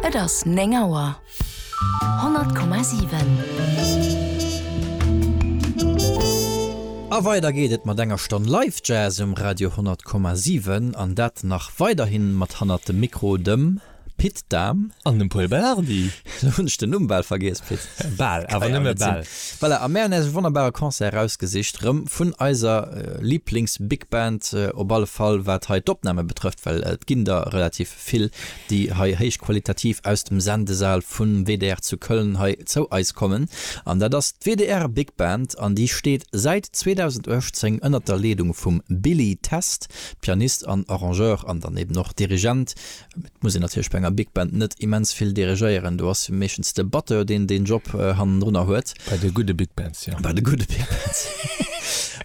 Et ass 9 Auer. 100,7. A weider geet et mat enger Stonn Live Jazz um Radio 100,7 an dat nach weiderhi mat hannert dem Mikro dem Pit Dahm. An dem Paul Belardi. Elo hunn ech den Numm bal vergiess, Pit. Bal, awer nëmme bal. Voilà, a mär hunn äis e wonnerbare Concert erausgesicht, rëm vun eiser Liiblings-Bigband, op alle Fall wat hei d'Opname betrëfft, well et ginn der relativ vill, déi hei héichqualitativ aus dem Sendesal vum WDR zu Köln hei zou eis kommen. An dat ass d'WDR Big Band an déi steet säit 2018 ënnert der Leedung vum Billy Test, Pianist an Arrangeur an dann eben och Dirigent Et muss een natierlech bei enger Big Band net immens vill dirigéieren, do ass meeschtens de Batteur, deen deen Job hannendrunner huet. Bei de gudde Big Bands, jo. Bei de gudde Big Bands.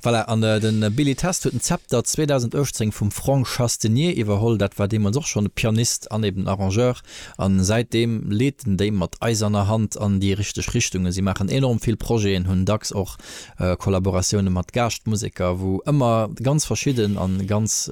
Voilà, an de Billy Test huet den Zepter 2018 vum Franck Chastenier iwwerholl. Dat war deemools och schonn e Pianist an eben Arrangeur a säitdeem leet en déi mat eiserner Hand an déi richteg Richtungen. Si maachen enorm vill Projeten, hunn dacks och Kollaboratioune mat Gaaschtmuseker, wou ëmmer ganz verschidden a ganz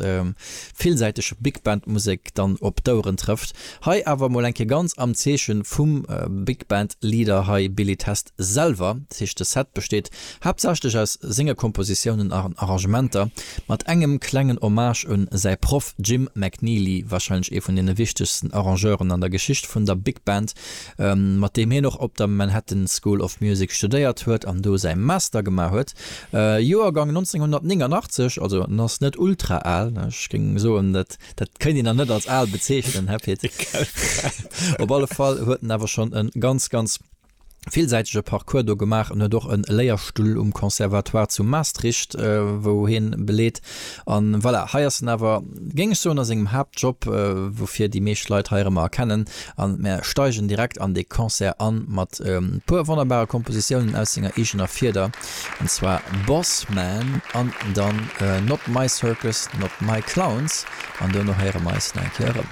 villsäiteg Big Band Musek dann op d'Oueren trëfft. Hei awer mol eng Kéier ganz am Zeeche vum Big Band Leader hei, Billy Test selwer. Dat heescht de Set besteet haaptsächlech aus senge Kompositiounen a Arrangementer, mat engem klengen Hommage un säi Proff Jim McNeely, warscheinlech ee vun deene wichtegsten Arrangeuren an der Geschicht vun der Big Band. mat deem hien och op der Manhattan School of Music studéiert huet an do säi Master gemaach huet, Joergang 1989, also en ass net ultra al, ech géing soen, dat kéint een nach net als al bezeechnen, Här Pit. Op alle Fall huet en awer schonn e ganz, ganz villsäitege Parcours do gemaach an huet och e Léierstull um Conservatoire zu Maastricht, wou hien beleet, An voilà, hei ass en awer, géing ech soen, a sengem Haaptjob, woufir déi meescht Leit hei erëmmer erkennen. A mär steigen direkt an dee Concert an, mat e puer wonnerbare Kompositiounen aus senger eegener Fieder, an zwar Boss Man an dann Not My Circus, Not My Clowns, an duerno héiere mer eis nach eng Kéier erëm.